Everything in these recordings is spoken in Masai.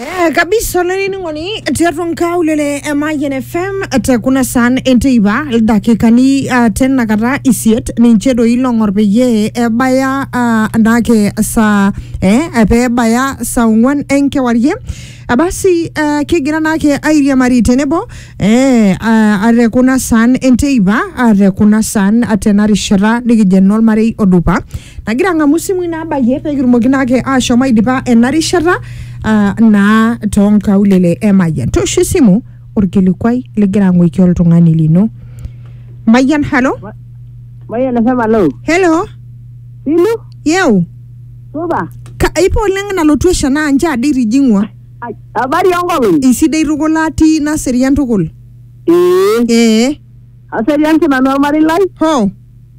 Eh, kabisa olainining'oni tiatua nkaulele e Mayian FM te kuna saan enteipa ildakikani uh, tenakata isiet ninche doi long'or peyie ebaya uh, naake saa eh, pee ebaya saa ong'wan enkewarie Ah, basi uh, kigira naake airiamari tenebo eh, uh, te kuna saan enteipa uh, te kuna saan uh, tena rishata nikijo enolmarei odupa nagira ang'amu isimui naabayie pee kitumoki naake ashom aidipa ena rishata ah, naa toonkaulele e Mayian. Toosho esimu orkilikuai ligira ang'oiki oltung'ani lino. Mayian, halo? Mayian FM alo. Hello? Sinu? Yeu? Supa? Ka, ipo oleng nalotu esha naa nche ade itijing'ua. Ai, Habari onkolong'i? Isidai tukul atii naserian tukul. Ee. Ee. Aserian sinanu ormarei lai. Hoo.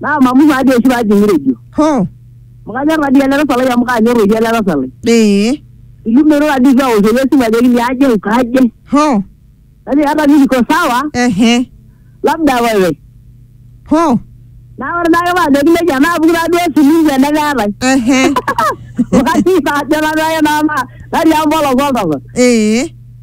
Naa mamumu ade oshi paajing'ire ejo. Hoo. Amu kanyor tadii ele tasat lai amu kaanyor oshi ele tasat lai. Ee. Ilumero tadii eitu aoshoki esimu ajoki liaje ukaje. Hoo. Najoki hata mi niko sawa. Ehe. Labda wewe. Hoo. Naa ore naake paajoki nejia naapuku taaduo esimu tenemeetae. Ehe. Wakati saa ajo nanu ake naa natii empolos oltasat. Ee.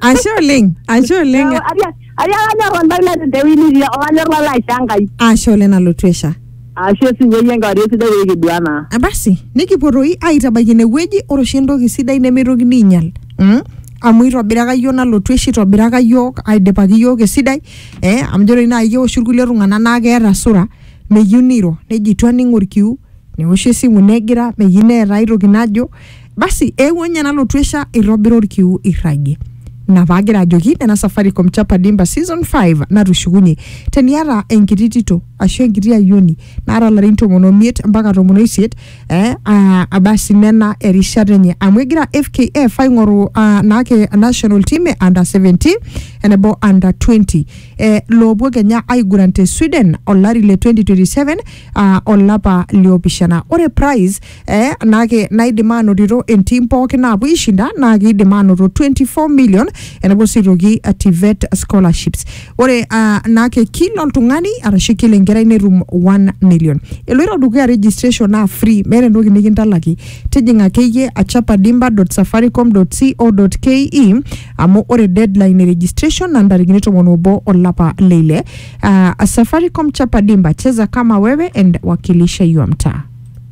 ashe oleng ashe oleng Ariakanyor oltau te wini idia olanyor lalo aisha Enkai. ashe oleng nalotu esha Ashe sinyeyie enkewarie sidai pee kidua naa. Ah, basi nikipuo toi aitabaiki inewueji ore oshi entoki sidai nemeitokini ainyal mm? amu itobiraka yiok nalotu esha itobiraka yiok aidipaki yiok esidai eh? amu ijo toi naaji keoshi irkulie tung'anak naa keeta sura meyieu neiro nejo itu aning orkiu neoshi esimu negira meyieu neeta aetoki najo basi eewuo ninye nalotu esha eitobira orkiu irragie ina paagira ajoki nena safaricom chapa dimba season 5 natushukunye teniata enkiti tito ashu enkiti ayioni naata larin tomon omiet mpaka tomon oisiet eh, ah, abasi nena erishata enye amu egira fkf aing'oru ah, naake national team e under 17 enebo under 20 eh, loopuo kenya aiguran te sweden olari le 2027 ah, olapa liopishana ore prize eh, nake naidim anotito entim pookin naapuo aishinda naa kiidim anoto 24 million enapuo sii aitoki uh, TVET scholarships ore uh, nake kila oltung'ani arashu kila enkerai netum 1 million eloito dukuya registration naa free meeta entoki nikintalaki tijing'a akeyie achapadimba.safaricom.co.ke amu ore deadline e registration na ntarikini tomon obo olapa leile uh, safaricom chapadimba cheza kama wewe and wakilisha your mtaa